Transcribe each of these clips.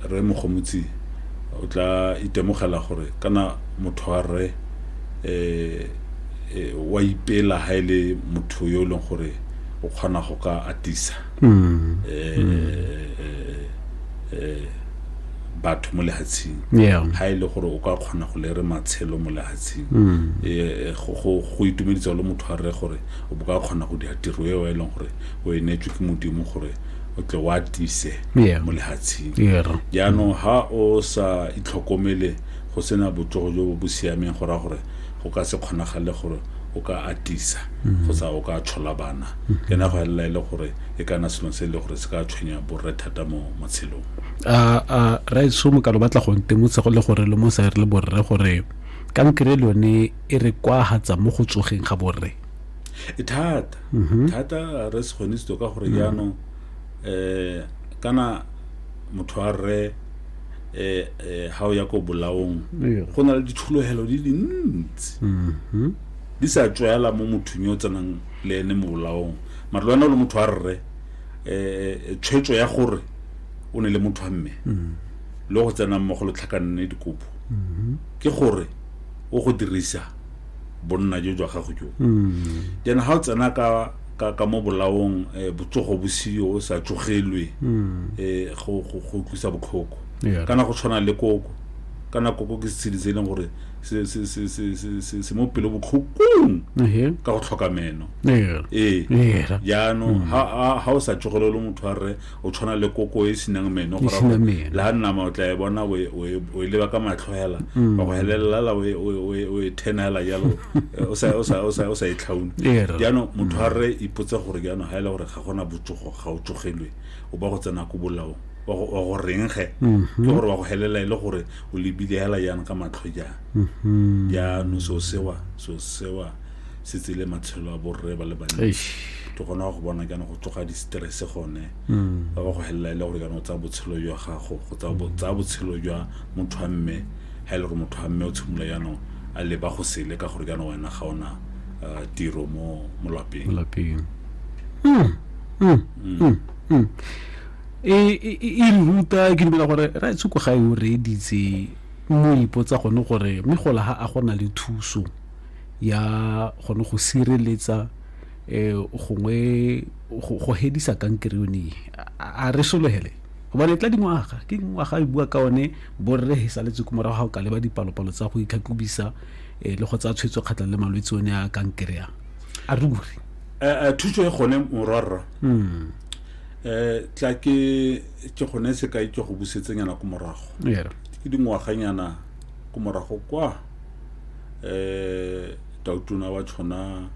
Rre Mogomotsi o tla itemogela gore kana motho wa rre um wa ipela ha e le motho yo e leng gore o kgona go ka atisa um batho mo lehatsheng ha e le gore o ka kgona go lere matshelo mo lehatsheng um go itumedisa le motho wa rre gore o bo ka kgona go dira tiro eo e leng gore o e neetswe ke modimo gore o tle wa tise Yeah. mo lehatsheng Yeah. jaanong ha o sa itlhokomele go sena botsogo jo bo bo siameng go raya gore go ka se kgonagale gore o ka atisa kgotsa o ka tshola bana ke na go elela e le gore e kana selo se e le gore se ka tshwenya borre thata mo matshelong a a raitso mokalo batla go ntemotsa go le gore le mo sa re le borre gore kankere le yone e re kwahatsa mo go tsogeng ga borre e thata mhm. thata re se kgone sito ka gore mhm. jaanong um kana motho a rre eh, eh, ha o ya ko bolaong go na le dithulogelo di dintsi mhm. di sa tswela mo mothong yo o tsenang le ene mo bolaong mare lwana o le motho a rre um tshwetso ya gore o ne le motho a mme mhm. le go tsenang mo go letlhakanne dikopo mhm. ke gore o go dirisa bonna jo jwa gago jo mm. then ga o tsena ka ka ka mo bolaong eh, botsogo bosio o sa tsogelwe mm. eh, go go tlisa botlhoko kana go tshwana le koko kana koko ke setshedi se e leng gore se mo pelo botlhokong ka go tlhoka meno ee jaanong ga mm. o sa tsogelelo motho a rre o tshwana le koko e senang meno go raya gore la nama o tla e bona o e- o e- o e leba ka matlho hela Mm. wa go helelela la o e- o e- o e- o e thena hela jalo eh, o sa- o sa- o sa o sa e tlhaune Ee, rra. jaanong motho a rre ipotse gore jaanong ga e le gore ga gona botsogo ga o tsogelwe o ba go tsena ko bolaong wa go- wa go reng ge Mhm. ke gore wa go helela e le gore o lebile hela jang ka matlho jang jaanong so sewa so sewa se tsele matshelo a borre ba le bantsi ke gona go bona kana go tsoga di-stress gone mm. ba ba go helela e le gore kana o tsaya botshelo jwa gago go tsaya botshelo jwa motho wa mme ga e le gore motho wa mme o tshimolola jaanong a leba go sele ka gore kana wena ga ona uh, tiro mo molapeng hmm, hmm, hmm, e, e, e, e ruta ke dumela gore ra tshoko ga e o reeditse mo ipotsa gone gore mme gola ga a gona le thuso ya gone go sireletsa um gongwe go hedisa kankere yone a re sologele gobane e tla dingwaga ke dingwaga e bua ka one borre e saletse ko morago ga o ka leba dipalopalo tsa go itlhatlhobisa um le go tsaya tshwetso kgatlhang le malwetse one a kankere yang a re bure thuso e gone morwarra um tla ke ke gone sekai ke go busetsenyana ko morago ke dingwaganyana ko morago kwa eh tautona wa tshona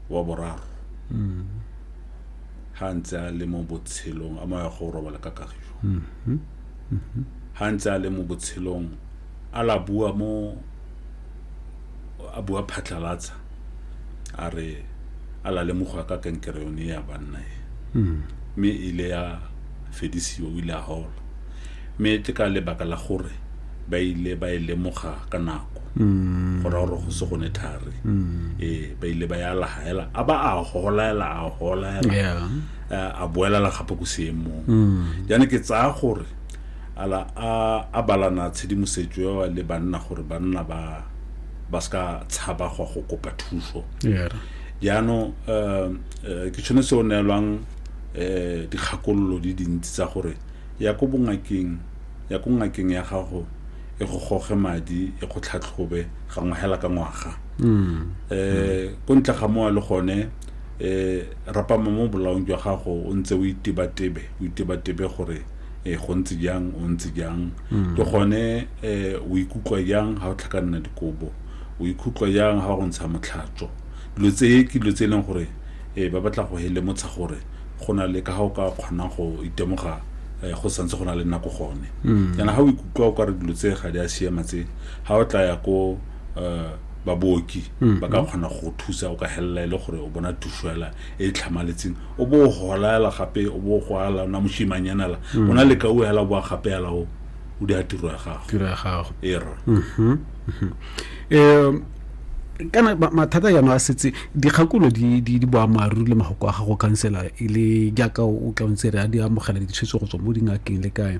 wa boraro ha ntse a le mo botshelong a maya go robala ka kagiso ha ntse a le mo botshelong a la bua mo a bua phatlhalatsa a re a la lemoga ka kankere yone ya banna e mme e ile ya fedisiwa o ile a hola Mme ke ka lebaka la gore ba ile ba e lemoga ka nako go raya gore go se gone thari ee ba ile ba ya lahaela a ba a holaela a holaela Yeah. eh, a boelela gape ko seemong jaana ke tsaya gore ala a a balana tshedimosetso eo le banna gore banna ba ba seka tshaba go go kopa thuso Yeah. jaanong um, eh, ke tshwanetse o neelwang um dikgakololo di dintsi tsa gore ya ko bongakeng ya ko ngakeng ya gago e go goge madi e go tlhatlhobe gangwe hela ka ngwaga um ko ntle ga moa le gone um rapama mo bolaong jwa gago o ntse o itebatebe o itebatebe gore um go ntse jang o ntse jang ke gone um o ikutlwa jang ga o tlhakanna dikobo o ikutlwa jang ga go ntsha motlhatso dilo tse ke dilo tse e leng gore um ba batla go helemotsha gore go na le ka ga o ka kgonang go itemoga um go santse go na le nako gone yana ga o ikutlwa o ka re dilo tse ga di a siama tse ga o tla ya ko um babooki ba ka kgona go thusa o ka helela e le gore o bona thuso hela e e tlhamaletseng o bo o golaela gape o bo o go ala ona moshimanyanala o na le ka o hela o boa gape hela o o di a tiro ya gago tiro ya gago e rona um kana mathata jaanong a setse dikgakulo di di di boammaaruri le magoko a gago khansela e le jaaka o tla o ntse re a di amogela ditshwetso go tswa mo dingakeng le kae